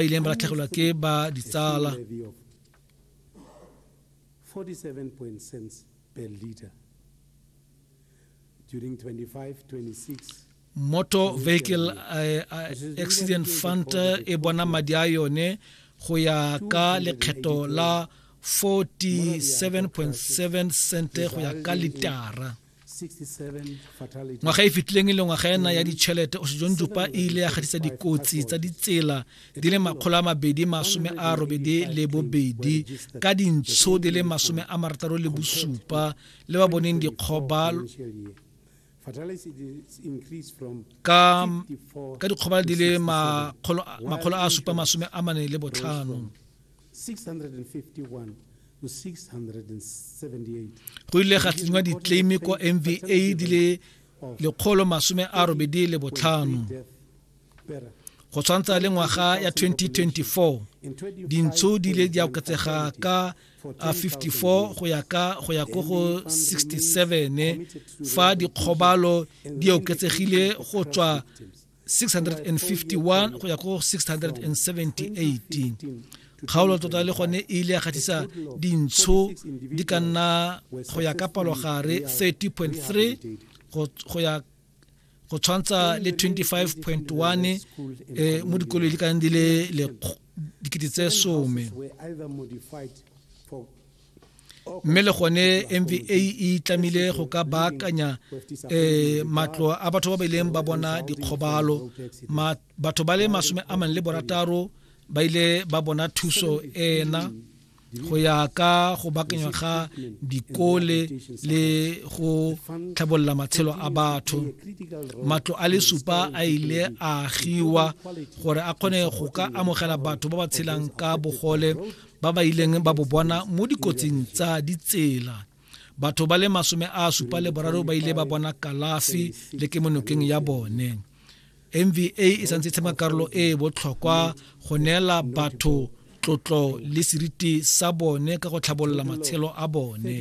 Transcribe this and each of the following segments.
ba ileng ba latlhegelwa ke ba ditsala motor vehicle eh, eh, accident fund e bona madi a yone go ya ka lekgetho la 47.7 cent go ya ka litara ngwaga e fetileng e le ngwaga ena ya ditšhelete osejon jupa e ile ya gatisa dikotsi tsa ditsela di le makgolo a mabedi masome a robedi le bobedi ka dintsho di le masome a marataro le bosupa le ba boneng dikgoba ka dikgobalo di le makgolo a supa masome a mane le botlhano go ile ga tsenywa ditleime kwa mva di le lekgolo masome a robedi le botlhano go tshwantsha le ngwaga ya 2024 dintsho di ile di oketsega ka 54 go ya ka go ya ko go 67 fa dikgobalo di oketsegile go tswa 651 go ya go 678 kgaolo tota le gone e ile ya gatisa dintsho di ka nna go ya ka palogare 30.3 go ya go tshwantsha le 25.1 eh, mo dikolong di ka nne di le dikete tse some mme le gone mva e tlamile go ka baakanya um matlo a batho ba ba ileng ba bona dikgobalo batho ba le masome a mane le borataro ba ile ba bona thuso ena go ya ka go bakanywa ga dikole le go tlhabolola matshelo a batho matlo a le supa a ile a agiwa gore a kgone go ka amogela batho ba ba tshelang ka bogole ba ba ileng ba bo bona mo dikotsing tsa ditsela batho ba le masome a supa le boraro ba ile ba bona kalafi le ke monokeng ya bone mva e santse e tshema karolo e e botlhokwa go neela batho tlotlo le seriti sa bone ka go tlhabolola matshelo a bone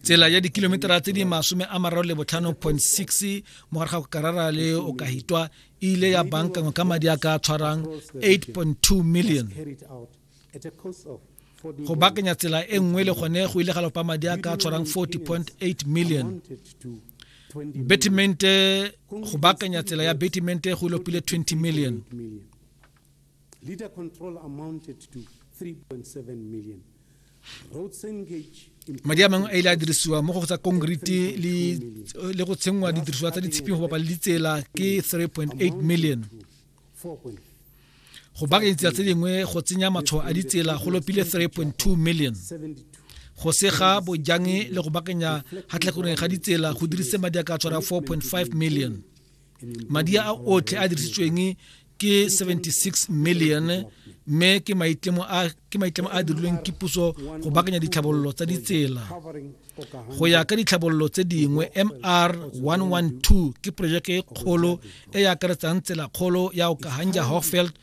tsela ya dikilometara tse di masome a mararo le botlhano point six mo gare ga go karara le o ka hitwa e ile ya bankangwe ka madi a ka tshwarang 8.2 million go bakanya tsela e nngwe le gone go ile ga lopa madi a ka tshwarang 40.8 million betimente go bakanya tsela ya betimente go lopile 20 million Litter control amounted to 3.7 million. Roads engage madi a mangwe a ile a dirisiwa mo go tsa konkrete le go tshengwa didirisiwa tsa ditshiping go bapala ditsela ke 3.8 million go baakanya ditsela tse dingwe go tsenya matshwao a ditsela go lopile 3.2 million go sega bojange le go baakanya gatlhakoreng ga ditsela go dirise madi a ka tshwara 4.5 million madi a otlhe a dirisitsweng ke 76 million mme ke maitlamo a ke maitlamo a dirilweng ke puso go bakanya ditlhabololo tsa ditsela go ya ka ditlhabololo tse dingwe mr 112 ke projeke e kgolo e e akaretsang tsela kgolo ya okahanja hofeld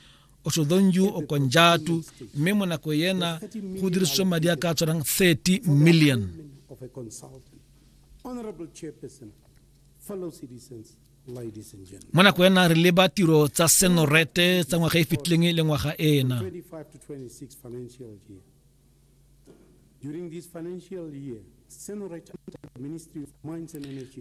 osodonju okonjatu mme mo nako ena go dirisitswe madi a ka tshwanang 30 million Honorable Chairperson, fellow citizens, mo nako ena re leba tiro tsa senorete tsa ngwaga e fitlhileng e le ngwaga ena During this financial year,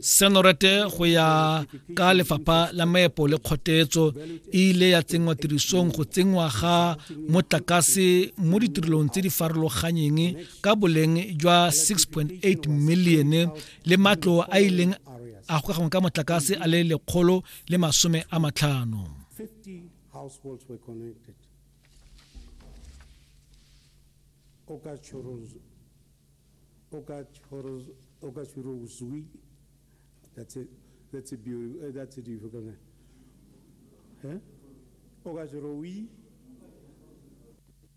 senorete go ya ka lefapha la maepo le kgotetso e ile ya tsenngwa tirisong go tsenngwa ga motlakase mo ditirelong tse di farologanyeng ka boleng jwa 6.8 milione le matlo a ileng a gokagangwe ka motlakase a le lekgolo le masome a matlhano That's it. That's a beautiful. Uh, that's a beautiful color. Huh? Ogajorowi.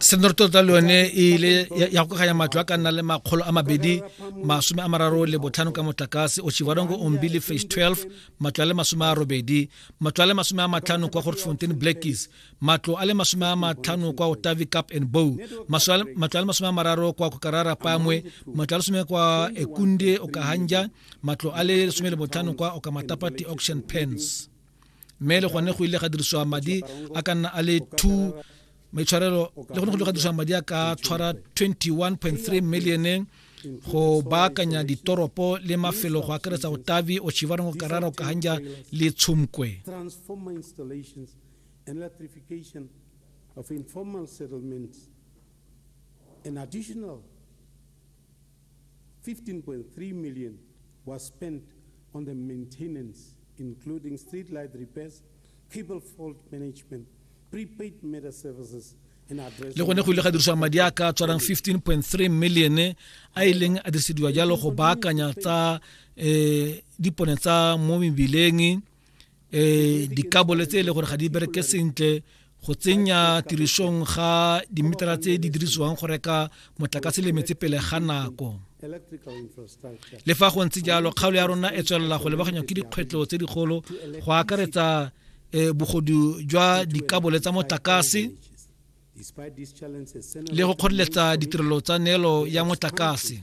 se tota le yone e ile ya go kganya matlo a ka nna le makgolo a mabedi masome a mararo le botlhano ka motlakase o chivarongo ombi le phase 12 matlo a le masome a robedi matlo a le masome a matlhano kwa gortfontein blackies matlo a le masome a matlhano kwa otavi cap and bow matlo a le masome a mararo kwa kokarara pamwe matlo a le some kwa ekunde okahanja matlo a le lesome le botlhano kwa okamatapati auction pens mme le gone go ile ga dirisiwa madi a ka nna a le 2 maitshwarelo le gone go ile ga dirisiwa madi a ka tshwara 21.3 millione go baakanya ditoropo le mafelo go akaretsa otavi ochivarongo karara okahanja le tshumkwe of informal settlements an additional 15.3 million was spent on the maintenance, including street light repairs, cable fault management, prepaid meter services, le gone go ile ga dirisiwa madi a ka tshwarang 15.3 million a e leng a dirisediwa jalo go baakanya tsa um dipone tsa mo mebileng eh dikabole tse e le gore ga di bereke sentle go tsenya tirisong ga dimetara tse di dirisiwang go reka motlakase le metse pele ga nako le fa go ntse jalo kgaolo ya rona e tswelela go lebaganywa ke dikgwetlho tse dikgolo go akaretsa eh, bogodu jwa dikabole tsa motlakase le go kgoreletsa ditirelo tsa neelo ya motlakase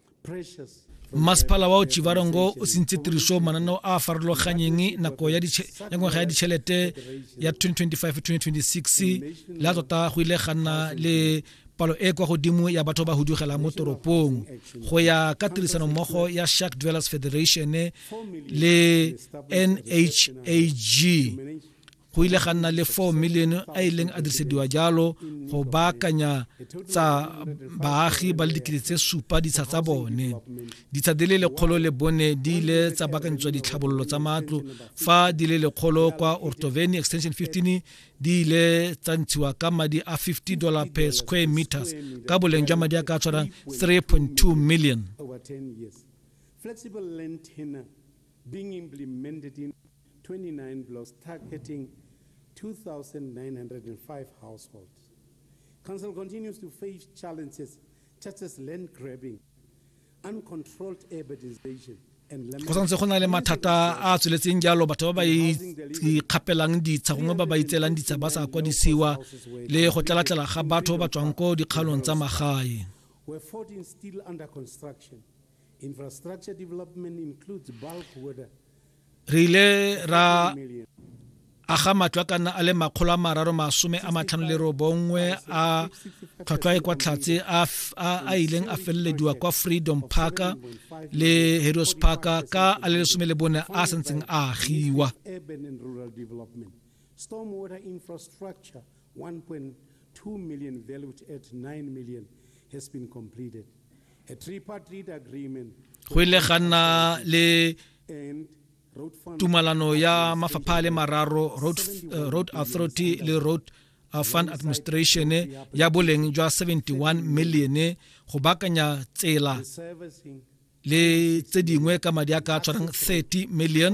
masepala wa ochivarongo o sentse tiriso mananeo a a farologanyeng nako ya ngwaga ya ditšhelete ya 2025-2026 la tota go ile ga nna le palo e kwa godimo ya batho ba hudugela mo toropong go ya ka tirisano mmogo ya Shark Dwellers Federation le NHAG go ile ga nna le 4 milione a ileng a dirisediwa jalo go baakanya tsa baagi ba le dikete tse supa ditsha tsa bone ditsha di le lekgolo le bone di ile tsa baakanyetswa ditlhabololo tsa matlo fa di le lekgolo kwa ortoveni extension 15 di ile tsa ntshiwa ka madi a 50 dollar per square meters ka boleng jwa madi a ka tshwarang 3.2 million flexible land tenor being implemented in 29 blocks targeting 2,905 households. Council continues to face challenges such as land grabbing, uncontrolled urbanization, go santse go na le mathata a a tsweletseng jalo batho ba ba ikgapelang ditsha gongwe ba ba itseelang ditsha ba sa kwadisiwa le go tlalatlela ga batho ba tswang ko dikgaolong tsa magae re ile ra aga matlo a ka nna a le makgolo a mararo masome a matlhano le robongwe a tlhwatlhwa e kwa tlhatse a ileng a felelediwa kwa freedom park le heroes park ka a le lesome le bone a santseng a agiwa stormwater infrastructure 1.2 million valued at 9 million has been completed go ile ga nna le tumalano ya mafapha a le mararo road, uh, road authority le road uh, fund administration ya boleng jwa 71 million go bakanya tsela le tse dingwe ka madi a ka tshwarang 30 million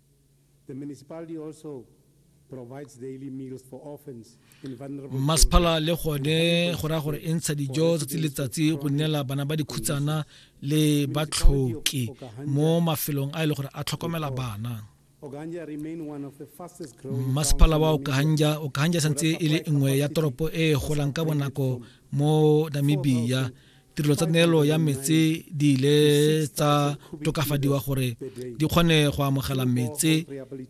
Mmasephala le gone go raya gore e ntsha dijo tsatsi le letsatsi go neela bana ba dikhutsana le batlhoki mo mafelong a e le gore a tlhokomela bana mmasephala wa okahanja okahanja santse e le nngwe ya toropo e golang ka bonako mo namibia tirelo tsa neelo ya metse di ile tsa tokafadiwa gore di kgone go amogela metse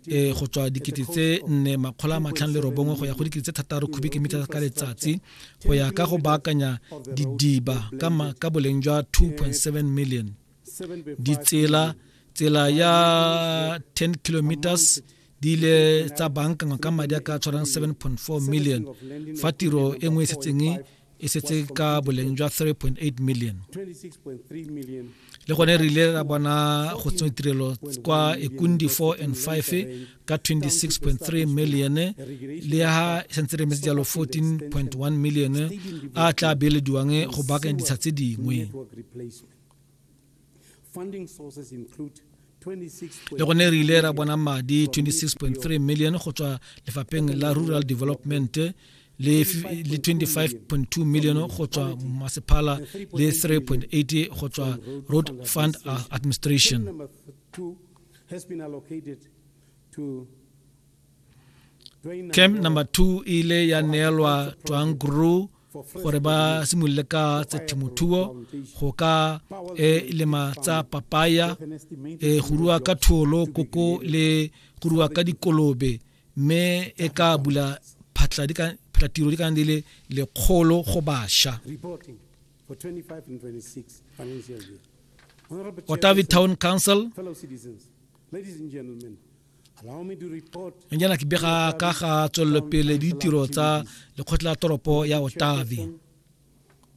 e go tswa dikete tse nne makgolo a matlhano le robongwe go ya go dikete tse thataro cubic meter ka letsatsi go ya ka go baakanya didiba ka boleng jwa 2.7 million ditsela tsela ya 10 kilometers di ile tsa bankangwa ka madi a ka tshwarang 7.4 million fa tiro e nngwe e setseng e setse ka boleng jwa 3.8 million le gone re ile ra bona go tsenya tirelo kwa ekundi 4 and 5 ka 26.3 million le ha e santse re metse jalo 14.1 million a tla beelediwang go baakanya ditsha tse dingwe le gone re ile ra bona madi 26.3 million go tswa lefapheng la rural development le 25.2 million go tswa masephala le 3.8 go tswa road fund administration camp number 2 ile ya neelwa twang group gore ba simolole ka tsa themothuo go ka e lema tsa papaya e go rua ka tholo koko le go rua ka dikolobe mme e ka bula phatla di ka phatla tiro di ka di le lekgolo go basha Otavi Town Council nnyana ke bega ka ga tswelelopele ditiro tsa lekgotla toropo ya otavi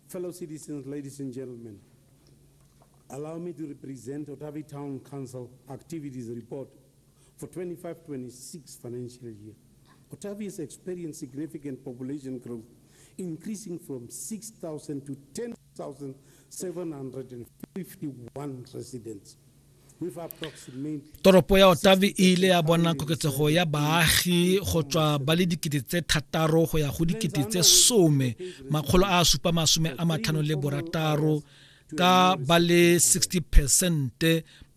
Fellow citizens, ladies and gentlemen, allow me to represent Otavi Town Council Activities Report for 25-26 financial year. Otavi has experienced significant population growth, increasing from 6,000 to 10,000. Toropo ya Otavi e ile ya bona koketsego ya baagi go tswa ba le dikete tse thataro go ya go dikete tse some makgolo a supa masome a matlhano le borataro ka ba le 60 percent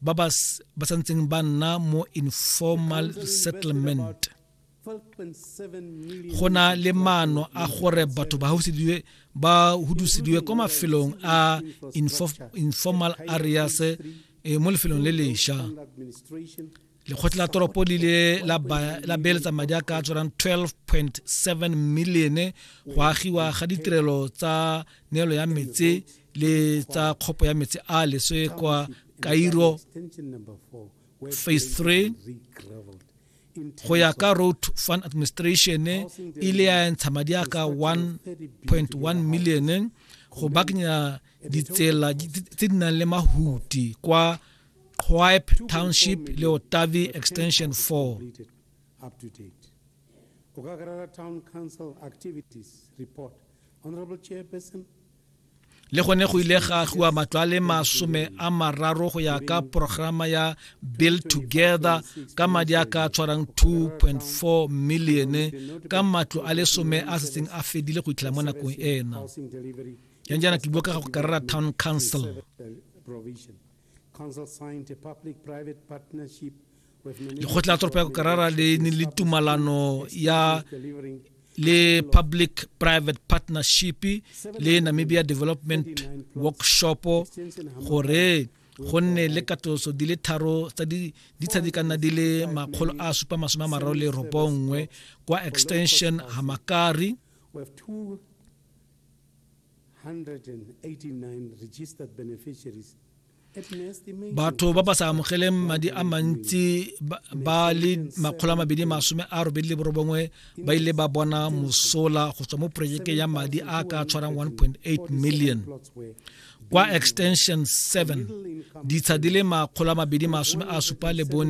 ba ba santseng ba nna mo informal settlement go na le maano a gore batho ba hausedilwe ba hudusediwe kwa mafelong a informal areas e, mo lefelong le lesha lekgotla la toropo le ile la beeletsa madi a ka tswang 12.7 million go agiwa ga ditirelo tsa neelo ya metse le tsa kgopo ya metse a leswe kwa kairo phase 3 go ya ka road fund administration e ile ya ntsha madi a ka 1.1 million go bakanya ditsela tse di nang le mahuti kwa Quaipe Township le Otavi Extension 4. Town Council Activities Report. Honorable Chairperson, le gone go ile ga agiwa matlo a le masome a mararo go ya ka programa ya build together ka madi a ka tshwarang 2.4 million ka matlo a le some a setseng a fedile go itlhela mo nakong ena yang jaana ke bua ka ga go karera town council Council signed a public-private partnership lekgotla la toropo ya kokarara le ne le tumalano ya le public private partnership le namibia development workshop gore go nne le katoso di le tharo tsa di ditsha di ka nna di le makgolo a supa masome a mararo le robongwe kwa extension hamakari batho ba ba sa amogeleng madi a mantsi ba le makgolo a mabedi masome a robedi le borobongwe ba ile ba bona mosola go tswa mo projekeng ya madi a ka tshwarang 1.8 million kwa extension 7 ditsha di le makgolo a mabedi masome a supa le bone